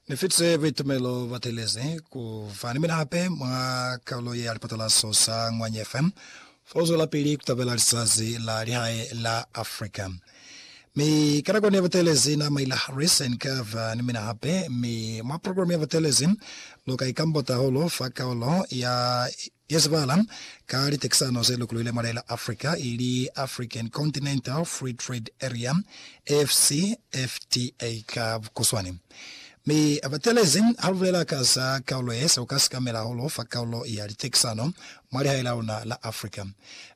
Ni fitize buitumelo bwa telezi ku fa ni mina hape mwa kalulo ye ya lipatalaso sa Ngwanye FM fa ku zwelapili ku tabela lizazi la lihae la Africa. Mi ka nako ne butelezi na maila Harris and kava ni mina hape, mi mwa program ya butelezi lu ka ikambota hulu fa kaulo ya Ya zibala ka litekisano ze lukuluile mwa lela Africa ili African Continental Free Trade Area, AfCFTA ka bukuswani, mi abatelezi ha lubulela ka za kaulo ye, seo ka sikamela hahulu fa kaulo ya litekisano mwa lihae la luna la Africa.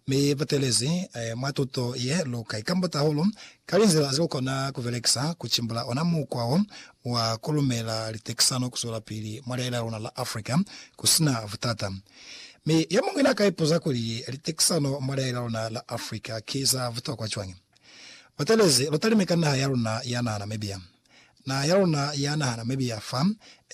Mi batelezi mwa tuto ye lu ka ikambota hahulu ka linzila ze lukona kubelekisa kucimbula ona mukwa wo wa ku lumela litekisano ku zwelapili mwa lihae la luna la Africa ku si na butata. Mi yo muñwi n'a ka ipuza kuli, Litekisano mwa lihae la luna la Africa ki za butokwa cwañi? Butelezi, lu talime ka naha ya luna ya naha Namibia. Naha ya luna ya naha Namibia fa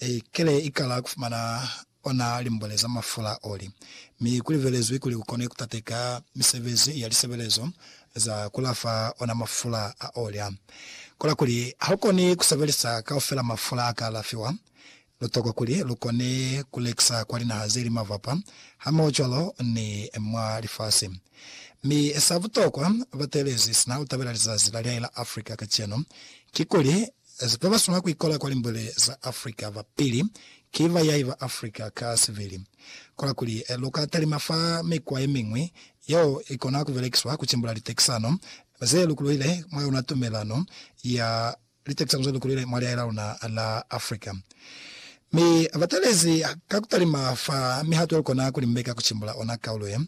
i kile i kala ku fumana o na limbweleza mafula oli, Mi ku libelezwi kuli ku kone ku tateka misebezi ya lisebelezo za ku lafa ona mafula a oli a. Kola kuli ha lu koni ku sebelisa kaufela mafula a ka lafiwa, lu tokwa kuli lu kone ku lekisa kwa linaha ze li mavapa hamohocwalo ni mwa lifasi. Mi sa butokwa, bateelezi sina lu tabela lizazi la liai la Africa kacenu, kikuli Ze ba ba swanela ku ikola kwa limbwele za Afrika ba pili ki ba yaiba Afrika ka sibili. Kola kuli lu ka talima fa mikwa ye miñwi yeo i kona ku belekiswa ku cimbula litekisano ze lukuluhile mwa yona tumelano ya litekisano ze lukuluhile mwa lihae la luna la Afrika. Mi ba talezi ka ku talima fa mihato ye lu kona ku limbeka ku cimbula ona kaulo ye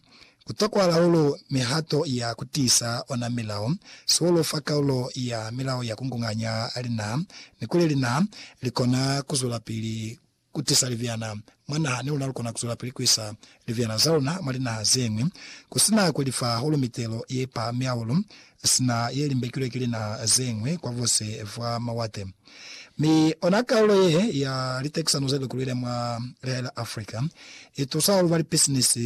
Ku tokwa laulu mihato ya ku tiisa ona milao, sihulu fa kaulo ya milao ya kungunganya linaha, ni kuli linaha li kona ku zwelapili ku tisa libyana mwa naha ni luna lu kona ku zwelapili ku isa libyana za luna mwa linaha ze ñwi, ku si na ku li fa hahulu mitelo ye pahami hahulu sina ye limbekilwe ki linaha ze ñwi kwa bose bwa mawate. Mi ona kaulo ye ya litekisano ze li kuluile mwa lihae la Africa, i tusa hahulu ba lipisinisi